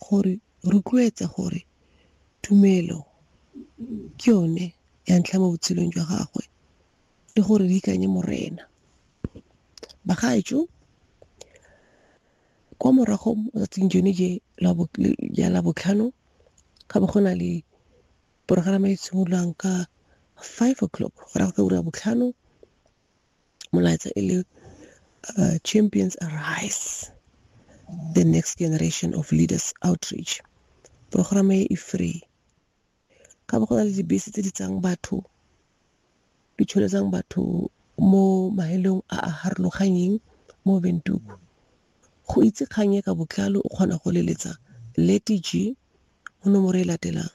gore rotloetsa gore tumelo ke yone ya ntlha mo botshelong jwa gagwe le gore re ikanye morena. Bagaetsho kwa morago mo tsatsing jone je ya labotlhano ga bo go na le porogerama e simololang ka five o'clock go ra go ka ura ya botlhano molaetsa e le uh, champions arise the next generation of leaders outreach programme e e free ka bo go na le dibese tse di tsang batho di tsholetsang batho mo maelong a a harologanyeng mo bentuku go itse kgang e ka botlalo o kgona go leletsa letg mo nomoro e latelang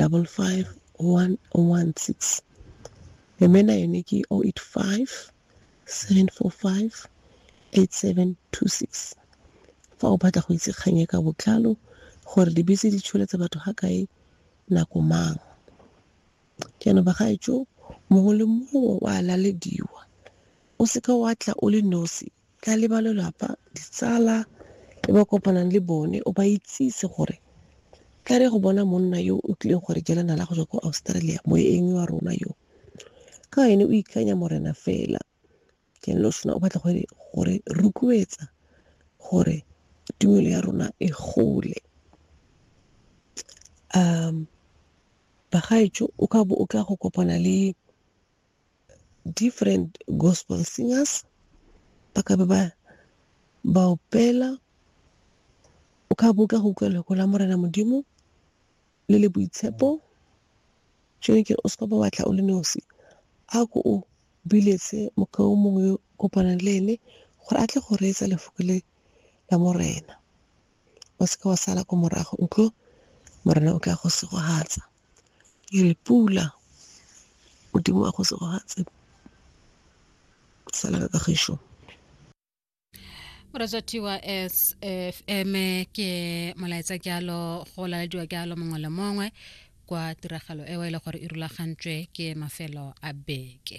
double five one one six mme na yone ke o oh eight five seven four five eight seven two six fa o batla go itse kgang e ka botlalo gore dibese di tsholetsa batho ga kae nako mang jaanong bagaetso mongwe le mongwe wa lalediwa o seka wa tla o le nosi Tla le ba lelapa, ditsala e ba kopanang le bone, o ba itsise gore tla re go bona monna yo o tlileng go re jela nala go tswa ko Australia, moeng wa rona yo. Ka ene o ikanya morena fela. Ke lo sona o batla gore gore rotloetsa gore tumelo ya rona e gole. Bagaetsho o ka bo o tla go kopana le different gospel singers ba ka be ba ba opela o ka bo ka go utlwa lego la morena modimo le le boitshepo jone ke o seka ba batla o le nosi a ko o biletse mokao mongwe yo kopanang le ene gore a tle go reetsa lefoko le la morena o seke wa sala ko morago nkgo Morena o tla go segogatsa. Ke re pula Modimo wa go segogatse sala ka kagišo. moratswathiwa s f m ke molaetsa ke alo go lalediwa ke alo mongwe le mongwe kwa tiragalo eo e le gore e rulagantswe ke mafelo a beke